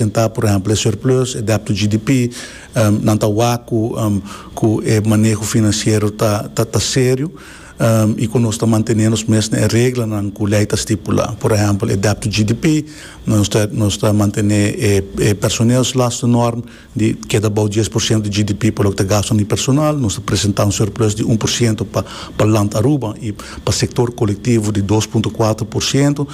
Den ta por ehempel e surplus, e dèbt to GDP, nan ta wak ku ku e maneho finansiero ta ta ta serio i ku nos ta mantené nos mes na e reglanan ku lei ta stipulá. Por ehempel, e dèbt to GDP, nos ta nos ta mantené e e personeelslastennorm di keda bou dies por siento di GDP pa loke ta gasto na e personal, nos ta presentá un surplus di un por siento pa pa Land Aruba i pa sektor kolektivo di dos punto kuater por siento.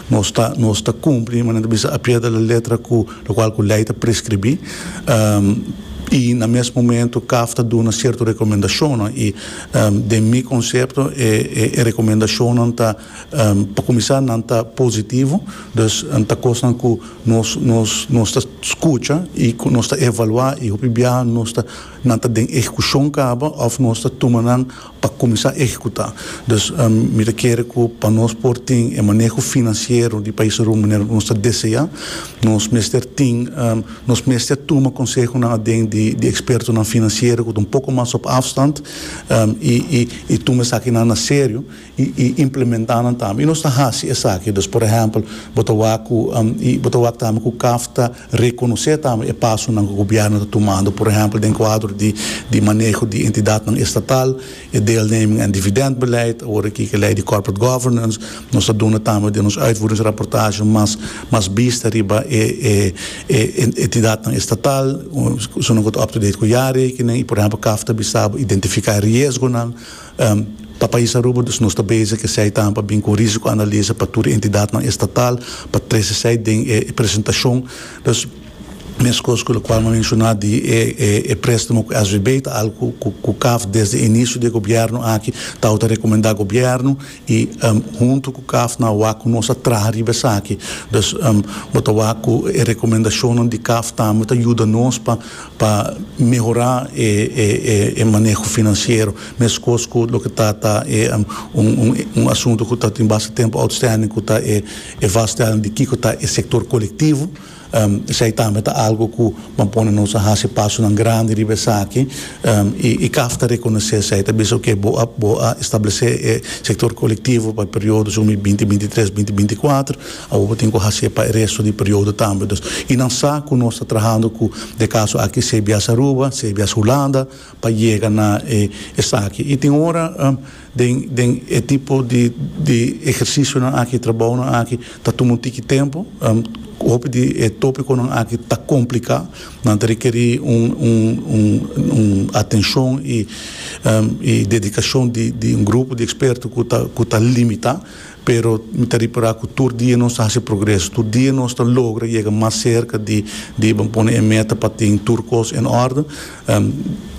Nos ta nos ta cumpli, mane nan ta bisa, a pie de la letra cu locual cu ley ta prescribi. Y na mes momento caf ta duna cierto recomendacionnan y den mi concepto e e recomendacionnan ta pa cuminsa nan ta positivo, dus ta cosnan cu nos nos nos ta scucha y cu nos ta evalua y hopi biaha nos ta nan ta den ehecucion caba of nos ta tuma nan pa kuminsá ehekutá. Dus mi ta kere ku pa nos por tin e maneho finansiero di paisrun manera ku nos ta deseá, nos mester tin nos mester tuma konsehonan aden di di ekspertonan finansiero ku ta un poko mas op afstand i i i tuma esakinan na serio i i implementá nan tambe. I nos ta hasi esaki. Dus por ehèmpel bo ta wak ku bo ta wak tambe ku kafta. Rekonosé tambe e pasonan ku gobièrnu ta tumando, por ehèmpel den kuadro di di maneho di entidatnan estatal, e deelneming en dividèntbeleid, awor aki ku e lei di corporate governance. Nos ta duna tambe den nos uitvoeringsrapportasje mas mas bista riba e e e entidatnan estatal, esuna ku ta up-to-date ku jaarrekening i por ehèmpel kaf ta bisa bo identifiká e riesgonan. Pa pais Aruba dus nos ta bezig esei tambe bin ku risiko analisa pa tur e entidatnan estatal pa trese esei den e presentashon. Dus meskos ku lokual mi a menshoná di e préstamo ku SVB ta algu ku kaf desde inisio di e gobièrnu aki ta wak ta rekomendá gobièrnu i huntu ku kaf nan a wak ku nos a traha riba esaki. Dus bo ta wak ku e rekomendashonnan di kaf tambe ta yuda nos pa Pa mehorá e maneho finansiero, meskos ku loke ta ta e un asuntu ku ta tin basta tempu outstanding ku ta e vaststelling di kiko ta e sektor kolektivo. Esei tambe ta algu ku ban pone nos a hasi pasonan grandi riba esaki i caf ta rekonosé esei. Ta bisa oke bo a establesé e sektor kolektivo pa e periodo sumi binti binti tres binti binti kuater. Awo bo tin cu hace pa e resto di periodo tambe. Dus y nan sa cu nos ta trahando cu de caso aki sea bias Aruba, sea bias Hulanda pa yega na e esaki. Y tin ora den den e tipo di di ehercicionan aki, trabounan aki ta tuma un tiki tempo. Hopi di e topiconan aki ta complica, nan ta requeri un un un un atencion y y dedicacion di di un grupo di experto cu ta cu ta limita. Pero mi ta repará ku tur dia nos ta hasi progreso. Tur dia nos ta logra yega mas serka di diba pone e meta pa tin tur kos en òrdu.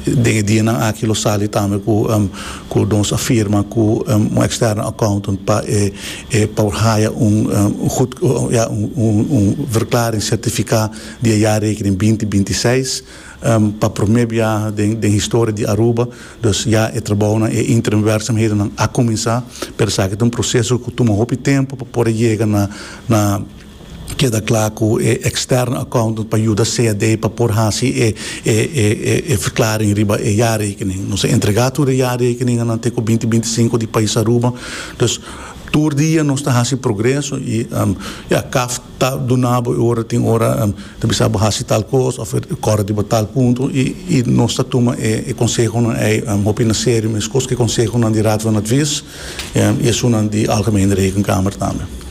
Den e dianan aki lo sali tambe ku nos a firma ku un eksterno accountant pa e por haya un gud, ya, un verklaring sertifiká di e jaarrekening binti binti seis. Pa promé biaha den historia di Aruba, dus ya e trabounan, e interimwerksamhedennan a kuminsá, pero esaki ta un proseso ku tuma hopi tempu pa por a yega na keda kla ku e eksterno accountant pa yuda CAD pa por hasi e verklaring riba e jarekening. Nos a entregá tur e jarekeninganan te ku binti binti sinku di pais Aruba, dus tur dia nos ta hasi progreso i ya kaf. ta duna bo e ora tin ora ta bisa bo hasi tal kos of e kòrda di bo tal punto i i nos ta tuma e e konsehonan ei hopi na serio meskos ku e konsehonan di Raad van Advies i esunnan di Algemene Rekenkamer tambe.